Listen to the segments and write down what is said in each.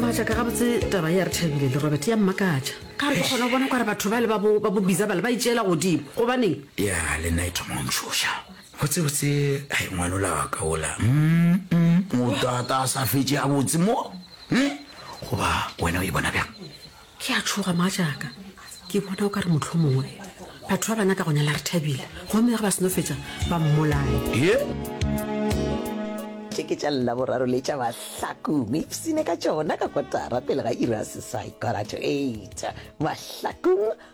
maatla ka gabotse taba ya re thabile le robert ya mmakatša ka re ke kgona go bona kware batho ba le ba bo ba bo biza bale ba itšeela godimo gobaneng ya le nna e thoma o ntšhoša botsebotse ga e ngwanola wa ka ola Mm, mm, o tata a sa fetse a botse mo Hmm? goba wena o e bona bjang Ke a tšhoga, mogatšaka. Ke bona o ka re mohlomongwe batho ba bana ka go nyala re thabile, gomme ge ba seno fetša ba mmolaye. Tše ke tša Laboraro le tša Bahlakong. Ipshine ka tšona ka kotara pele ga iri ya seswai, quarter to eight, Mahlakong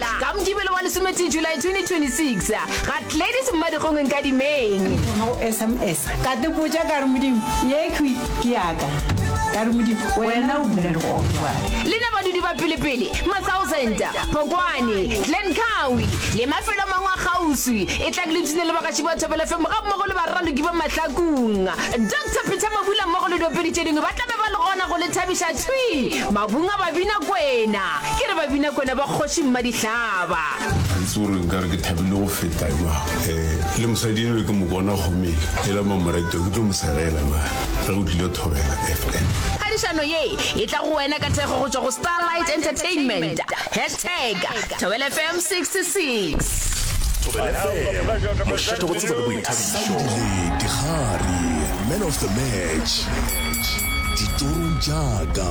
Ka Mokibelo wa lesometee July 2026, ga Gladys Mmadikgong Nkadimeng. Ke thoma go sms ka tepotša ka re Modimo ye khwi ke yaka ka re Modimo wena o bula legogo bjale. Le na badudi ba pelepele, Matsausenta, Phokwane, Glen Cowie le mafelo a mangwe a kgauswi, e tla ke le tune le bagatši ba Thobela FM ga mmogo le baraloki ba Mahlakung. Doctor Peter Mabula mmogo le diopedi tše dingwe ba tla be ba le gona go le thabiša thwi mabung a Babinakwena. Ke re Babinakwena ba Kgoši Mmadihlaba. Ga itse gore nka re ke thabile go feta jwang. Um le mosadi enwe ke mo bona gomeng e la mamoreto ke tlo mo segela na ge o tlile thobela FM. Phadišano ye e tla go wena ka thekgo go tšwa go Starlight Entertainment. Hashtag Thobela FM 66. Thobela FM, mošate go tsebo le boithabišo. Dikgari, man of the match. Ditorong tša ka.